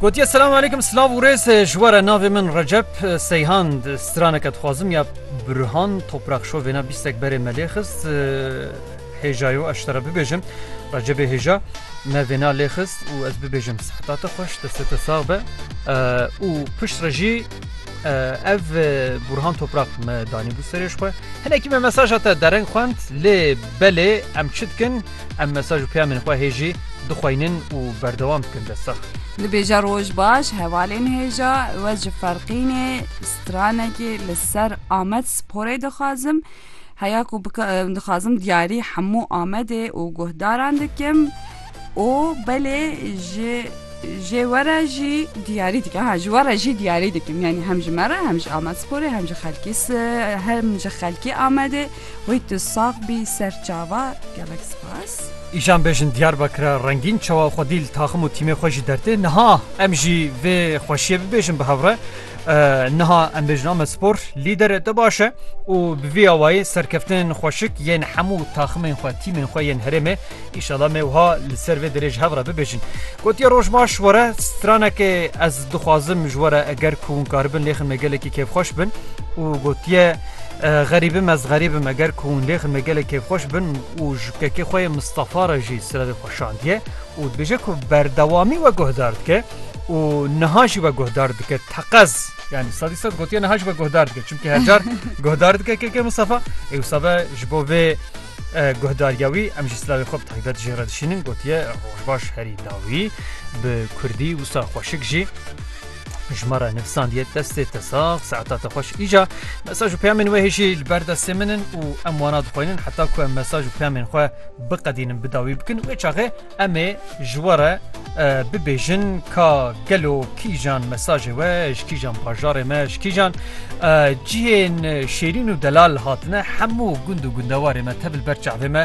Gotiye selam aleyküm silav û rêz ji we re navê min Recep Seyhand straneke dixwazim ya Burhan Toprak Şo vêna bîstek berê me lê xist hêjayo ez te re bibêjim Recepê hêja me vêna lê xist û ez bibêjim sehta te xweş destê te sax be û pişt re jî ev Burhan Toprak me danî bû serê ji xwe hinekî me mesaja te dereng xwend lê belê em çi dikin Em mesaj û peyamên xwe hê jî dixweynin û berdewam dikin destsax. Dibêje roj baş hevalên hêja we ji ferqînê stranekê li ser Amed sporê dixwazim heya ku dixwazim diyarî hemû Amedê û guhdaran dikim û belê ji jê we re jî diyarî dikim ha ji we re jî diyarî dikim yanî hem ji me re hem ji Amed sporê hem ji xelkî hem ji xelkî Amedê Wê tu sax bî serçava gelek spas. Îjan bêjin Diyarbakira rengîn çawa xwedî li taxim û tîmê xwe jî dertê niha em jî vê xweşiyê bibêjin bi hevre niha em bêjin Amed Spor lîdere te baş e û bi vî awayî serkeftinên xweşik yên hemû taximên xwe tîmên xwe yên herêmê îşala me wiha li ser vê derê ji hev re bibêjin gotiye roj baş were stranekê ez dixwazim ji were eger ku hûn karibin lêxin me gelekî kêfxweş bin û gotiye Xerîbi me ez xerîbi me ger ku hûn lêxin me gelê kêfxweş bin û ji kekê xwe yê Mistefa re jî sirevê xwe şandiye û dibêje ku berdewamî we guhdar dike û niha jî we guhdar dike teqez yanî sedî sed gotiye niha jî we guhdar dike çimkî her car guhdar dike kekê Mistefa ê wisa be ji bo vê guhdariya wî em jî sirevê xwe bi taybet jê re dişînin gotiye roj baş herî dawî bi kurdî wisa xweşik jî. Jmara nivsandiye destê te sax saeta te xweş îca mesaj û peyamên wê hêjî li ber destê min in û em wana dixwînin heta ku em mesaj û peyamên xwe biqedînin bi dawî bikin wê çaxê em ê ji we re bibêjin ka gelo kîjan mesajê we ji kîjan bajarê me ji kîjan cihên şêrîn û delal hatine hemû gund û gundewarê me tebil ber çavê me